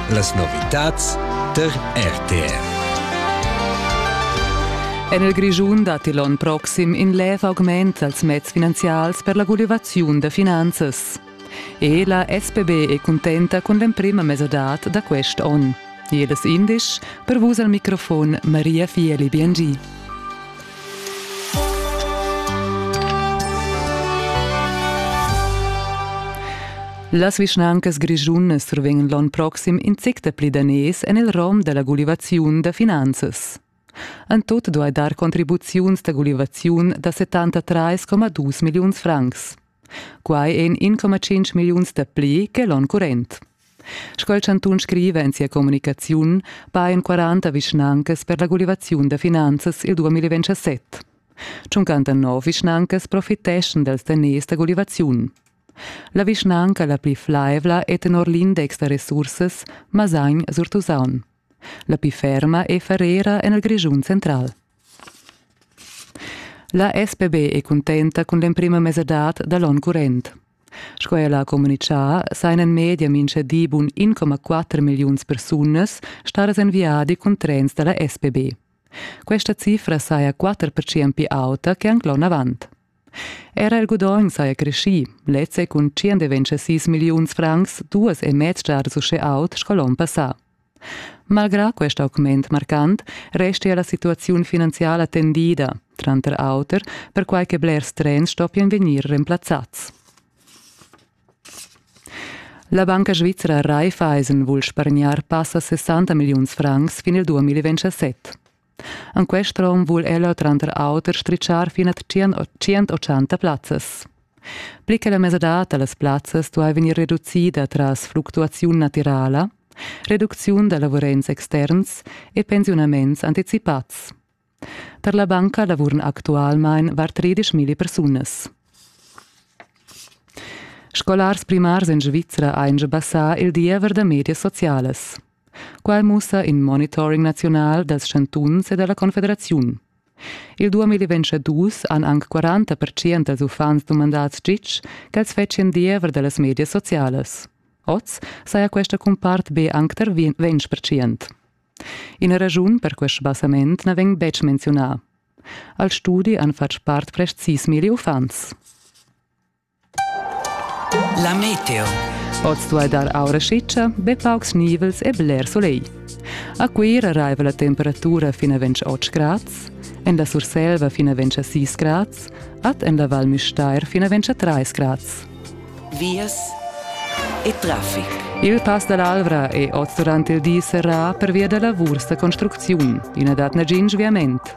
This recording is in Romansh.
Las novitads tar RTR. En il Grischun datti l'onn proxim in lev augment dals meds finanzials per la gulivaziun da finanzas. E la SPB è cuntenta cun l'emprima mesadad da quest onn. Jedes indisch, per vus al microfon Maria Fieli Biengi. Las vischnancas grischunas survegnan l'onn proxim in zic dapli daners en il rom da la gulivaziun da finanzas. En tut duai dar contribuziuns da gulivaziun da 73,2 milliuns francs. Quai èn 1,5 milliuns dapli che l'onn current. Sco il chantun scriva en sia communicaziun, pajan 40 vischnancas per la gulivaziun da finanzas il 2027. 59 vischnancas profiteschan dals daners da gulivaziun. La vischnanca la pli flaivla è tenor l'index da resursas Masagn-Surtusaun. La pli ferma è Ferrera en il Grischun central. La SPB è cuntenta cun l'emprima mesadad da l'onn current. Sco ella ha communitgà, sajan en media mintga di bun 1,4 milliuns persunas stadas en viadi cun trens da la SPB. Questa cifra saja 4% pli auta che anc l'onn avant. Era il gudogn saja creschì, lez è cun 126 milliuns francs duas e mez giadas uschè aut sco l'onn passà. Malgrà quest augment marcant restia la situaziun finanziala tendida, tranter auter perquai che blers trens stoppien vegnir remplazzads. La banca svizra Raiffeisen vul spargnar passa 60 milliuns francs fin il 2027. En quest rom vul ella tranter auter stritschar fin a 180 plazzas. Pli che la mesadad da las plazzas duai vegnir reducida tras fluctuaziun natirala, reducziun da lavurents externs e pensiunaments anticipads. Per la banca lavuran actualmain var 13.000 persunas. Scolars primars en Svizra ein già passà il diever da medias socialas. Quai mussa in monitoring naziunal dals chantuns e da la Confederaziun. Il 2022 han anc 40 pertschient dals uffants dumandads gitg ch'els fetschien diever da las medias socialas. Oz saja questa cumpart be anc tar 20 pertschient. Ina raschun per quest sbassament na vegn betg menziunà. Al studi han fatg part prest sis milli uffants. La meteo. Oz duai dar aura schitscha, be paucs nivels e bler solegl. A Cuira raiva la temperatura fin a 28 grads, en la Surselva fin a 26 grads, ad en la Val Müstair fin a 23 grads. Vias e traffic. Il Pass dall'Alvra è oz durant il di serrà pervia da lavurs da construcziun. I na dat nagin sviament.